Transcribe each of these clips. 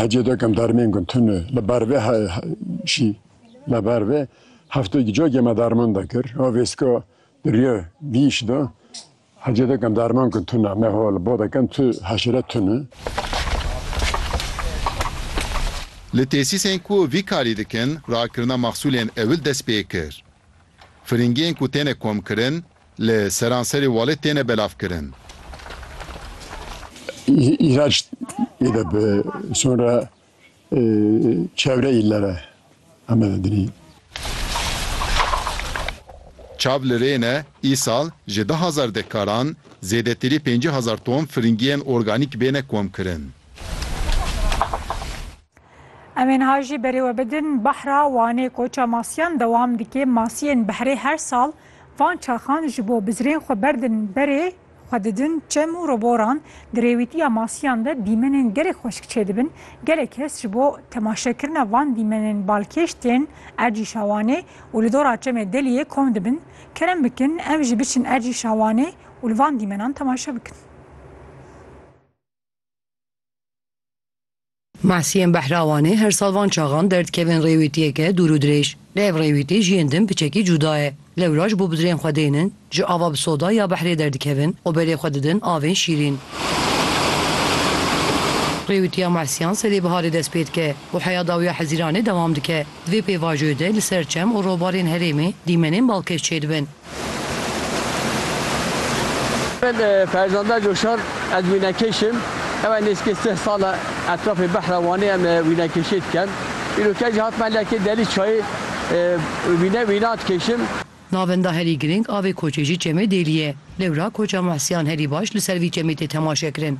Hecê dokem darmên gun tune li ber vê şî li ber vê heftê gi cokê me darman da kir. O vêska diriye vî şî da hecê dokem darman gun tune me ho li bo dekem tu heşire tune. Li tesîsên ku vî karî dikin rakirina maxsûlên ewil dest pê kir. Firingiyên ku têne komkirin, li seranserê Walê têne belavkirin. Îhraç têde bi sonra çevre îllere Amedê dinî. Çav li rê ne, îsal ji du hezar dekkaran zêdetirî pêncî hezar ton firingiyên organîk bêne komkirin. Em ê niha jî berê we bidin, Bahra Wanê koça masiyan dewam dike, masiyên behrê her sal Van çaxan ji bo bizirên xwe berdin berê xwe didin çem û roboran, di rêwîtiya masiyan de dîmenên gelek xweşik çêdibin, gelek kes ji bo temaşekirina van dîmenên balkêş tên ercî şawanê û li dora çemê Deliyê kom dibin, kerem bikin ev jî biçin ercî şawanê û li van dîmenan temaşe bikin. Mahsiyên Behrawanê her sal van çaxan derdikevin rêwîtiyeke dûr û dirêj. Lê ev rêwîtî ji yên din piçekî cûda ye. Lewra ji bo bidirên xwe dênin, ji ava bi soda ya behrê derdikevin û berê xwe didin avên şîrîn. Rêwîtiya mahsiyan serê biharê dest pê dike û heya dawiya hezîranê dewam dike. Di vê pêvajoyê de li ser çem û robarên herêmê dîmenên balkêş çêdibin. Min Ferzanda Coşar ez wînekêş im. Ew nêzîkê sih sal e etrafê behra Wanê em wînekêşiyê dikin. Îro ke jî hatime leke Delî Çayê wîne wîna dikêşim. Navenda herî girîng avê koçê jî çemê Dêlî ye. Lewra koça Muhsiyan herî baş li ser vî çemê tê temaşekirin.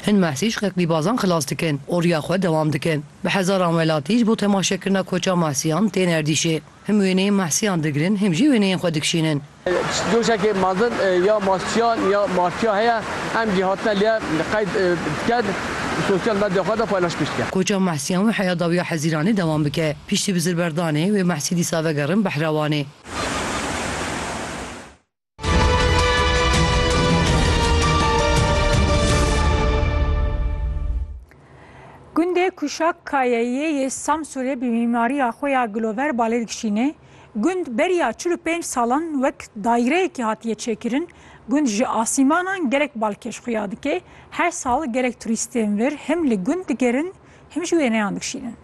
Hin Muhsî ji qeqlîbazan xilas dikin û riya xwe dewam dikin. Bi hezaran welatî ji bo temaşekirina koça Mahsiyan tên erdîşê. Him wêneyên Mahsiyan digirin him jî wêneyên xwe dikişînin. Doşeke mezin ya Mahsiyan ya Martiya heye em jî hatine lê qeyd dikin û sosyal medya xwe de paylaşmî dikin. Koça Mahsiyan wê heya dawiya Hezîranê dewam bike. Piştî bizirberdanê wê Mahsî dîsa vegerin Behrewanê. Gundê Kuşak Kayeyê yê Samsurê bi mîmariya xwe ya gilover balê dikişîne. Gund beriya çil û pênc salan wek daîreyekî hatiye çêkirin. Gund ji asîmanan gelek balkêş xuya dike. Her sal gelek turîstên vir him li gund digerin Him jî wêneyan dikşînin.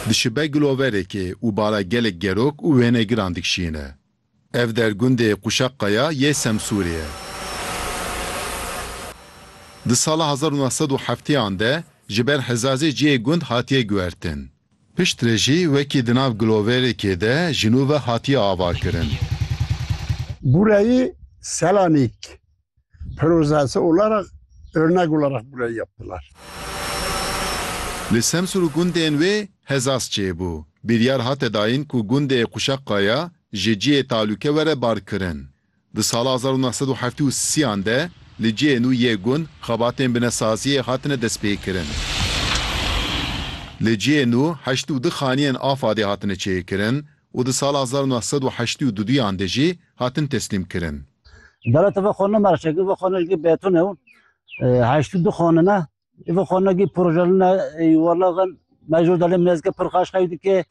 Dişibe giloverekê û bala gelek gerok û wênegiran dikşîne. Ev der gundê Quşaqaya yê Semsûrê ye. Di sala hezar û neh sed û hefteyan de ji ber hezazê cihê gund hatiye guhertin. Piştre jî wekî di nav giloverekê de ji nû ve hatiye avakirin. Bureyê Selanik projesi olarak örnek olarak burayı yaptılar. Li Semsûr û gundên wê hezas çêbû. Biryar hate dayin ku gundê Quşeqaya ji cihê talûke were barkirin. Di sala hezar û neh sed û heftê û sî an de li cihê nû yê gund xebatên binesaziyê hatine destpêkirin. Li cihê nû heşt û du xaniyên afadê hatine çêkirin û di sala hezar û neh sed û heştî û du duyan de jî hatin teslîm kirin. Dewleta vê xanina mercekî vê xanina jî beton e û heştî û du xanin e. Vê xanina jî projelin e yuvarlak in. Mejûr delê minezike pir xweş xew dike.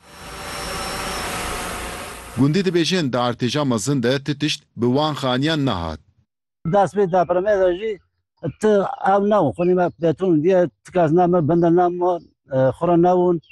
Gundî dibêjin di artêşa mezin de ti tişt bi wan xaniyan nehat. Dest pê depremê de jî ti ew nebûn. Xwînîme beton diye ti kes ne min bin de ne min xwe re nebûn.